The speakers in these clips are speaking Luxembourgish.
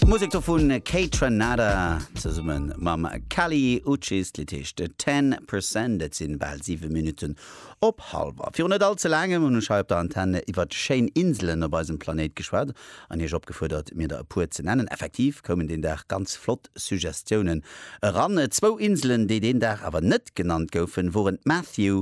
D'Musek do vun Kate Ranada zesummen mam Kali Uchis, d'Lidd heescht 10 percent. Et sinn bal 7 Minutten op halwer. Virun net all ze laangem hunn ech hei op der Antenne iwwert schéin Inselen op eisem Planéit geschwat an iech opgefuerdert mir der e puer ze nennen. Effektiv koumen deen Dag ganz flott Suggestiounen eran. Zwou Inselen déi deen Dag awer net genannt goufen woren d'Matthew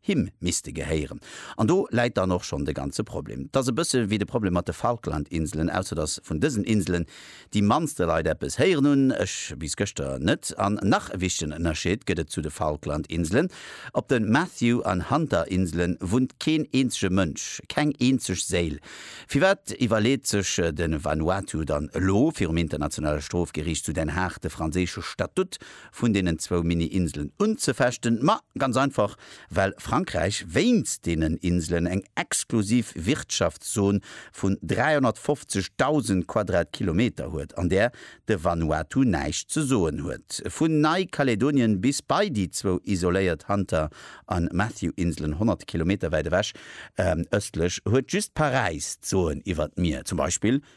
Him misste gehéieren. An do läit dann och schonn de ganze Problem. Et ass e bësse wéi de Problem mat de Falklandinselen, ausser datt vun dësen Inselen déi mannste Leit eppes héieren hunn, ech bis gëschter net. An nach e wichtegen Ënnerscheed gëtt et zu de Falklandinselen, Op de Matthew an Hunterinsele wunnt keen eenzege Mënsch, keng eenzeg Séil. Firwat iwwerleet sech de Vanuatu dann elo, virum Internationale Strofgeriicht zu Den Haag de franséische Statut vun deenen zwou Mini-Inselen unzefechten, ma ganz einfach, well Frankräich wéinst deenen Inselen eng exklusiv Wirtschaftszon vun 350.000 Quadratkilometer huet, an där de Vanuatu näischt ze soen huet. Vun Neikaledonien bis bei déi zwou isoléiert Hunter a Matthew-Inselen, 100 Kilometer wäit ewech ëstlech, huet just Paräis d'Soen iwwer d'Mier, zum Beispill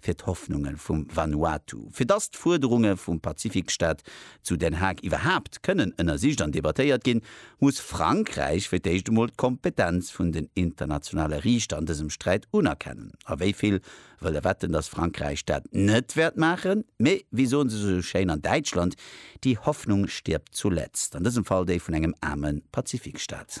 fir d'Hoffnunge vum Vanuatu, fir dass d'Fuerderunge vum Pazifikstaat zu Den Haag iwwerhaapt kënnen ënnersicht an debattéiert ginn, muss Frankräich fir d'éischt emol d'Kompetenz vun den internationale Riichter an dësem Sträit unerkennen. A wéi vill wëlle wetten, dass Frankräich dat net wäert maachen? Mee, wéi soen se esou schéin an Däitschland, Die Hoffnung stirbt zuletzt. An dësem Fall déi vun engem aarme Pazifikstaat.